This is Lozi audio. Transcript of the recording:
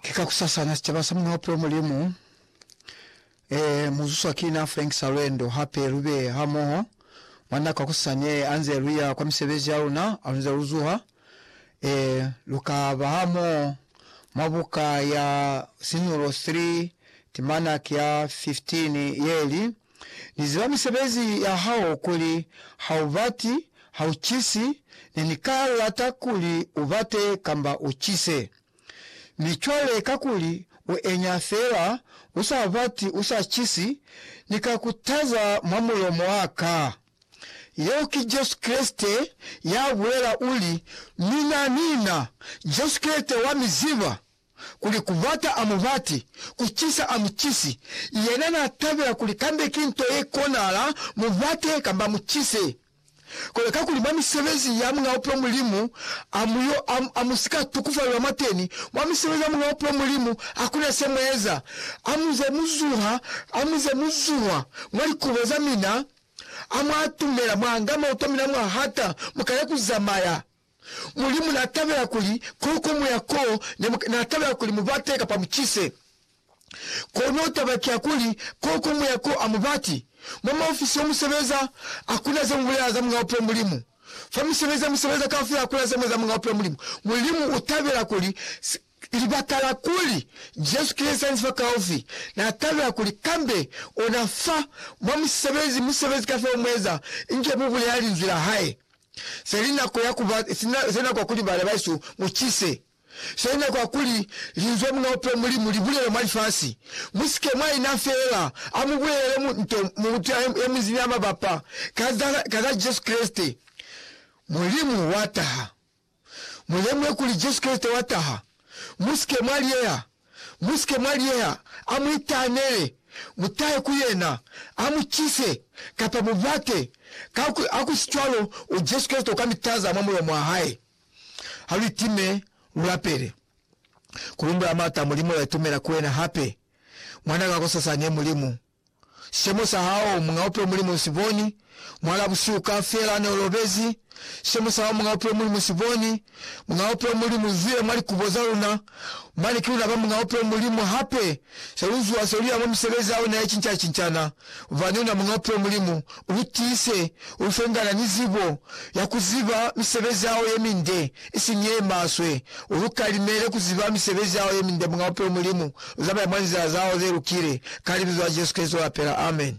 Ki ka ku sasana sicaba sa munaope o Mulimu. Ee, mu zuswa ki na Frank sa lwendo. Hape lu be hamoho mwa nako kosasani ee, anze lu ya kwa misebezi ya luna, alunze lu zuha. Ee, lu ka ba hamoho mwa buka ya Sinulo 3, timanak ya 15, ye li, Ni ziba misebezi ya hao kuli ha u bati, ha u cisi, ne ni ka lata kuli u bate kamba u cise. Mi cwale kakuli u enya fela, u sa bati, u sa cisi, Ni ka ku taza mwa mulomo wa ka. Yeo ki Jesu Kreste ya bulela, u li, Mina, mina, Jesu Kreste wa mi ziba. kuli kubata a mubati, kucisa a mucisi, yena na tabela kuli kambe ki nto ye konahala mubate kamba mucise. Kono kakuli mwa misebezi ya Muñ'a Bupilo Mulimu a mu yo, a, a mu si ka tukufalelwa mwateni, mwa misebezi ya Muñ'a Bupilo Mulimu hakuna se mu eza. A mu ze mu zuha, a mu ze mu zuha mwa likubo za mina, a mu atumela, mwa nga mauto a mina mwa hata, mu kale ku zamaya. Mulimu n'a tabela kuli ko ko mu ya ko ne mu, n'a tabela kuli mu bate kapa mu cise. Kono taba ki ya kuli ko ko mu ya ko a mu bati. Mwa maofisi yo mu sebeza, ha ku na ze mu bulela za Muñ'a Bupilo Mulimu. Fa misebezi ye mu sebeza kaufela ha ku na ze mu eza Muñ'a Bupilo Mulimu. Mulimu u tabela kuli se, Libakala kuli, Jesu ki Lisanisi fa kaufi, na tabela kuli kambe ona fa mwa musebezi, musebezi kafela umueza, inge mu bulela Linzwi la Hae. Se li nako ya kuba, se nako ya kuli bana bahesu mu cise. Se li nako ya kuli Linzwi la Muñ'a Bupilo Mulimu li bulelwe mwa lifasi. Mu sike mwa ina feela, a mu bulelele mu, nto, mutu ye munzi ni ya mabapa ka za, ka za Jesu Kreste. Mulimu wa taha. Mulemuhe kuli Jesu Kreste wa taha. Musike mwa liyeha. Musike mwa liyeha. A mu itaanele. Mutahe ku Yena. A mu cise, kapa mu bate. Ka, ha ku si cwalo, u Jesu Kreste uka mi taza mwa mulomo wa Hae. Ha lu itime, lu lapele. Ku lumbula Mata, Mulimu, la itumela ku Wena hape. Mwanaka, ku sasani, e Mulimu. Sicemo sa hao, Muñ'a Bupilo Mulimu Nsi Boni, Mwal'a busihu kaufela ne u lobezi, Sicemo sa hao, Muñ'a Bupilo Mulimu Nsi Boni, Muñ'a Bupilo Mulimu u zwile mwa likubo za luna, Mane ki luna ba Muñ'a Bupilo Mulimu, Hape, se lu zuha se lu ya mwa misebezi ya una ye cinca-cincana, Bubani una Muñ'a Bupilo Mulimu, Lu tiise u fungana ni zibo ya ku ziba misebezi ya hao ye minde, isiñi ye maswe. U lu kalimele ku ziba misebezi ya hao ye minde, Muñ'a Bupilo Mulimu. U zamaya mwa nzila za hao ze lukile, ka Libizo la Jesu Kreste u lapela. Amen.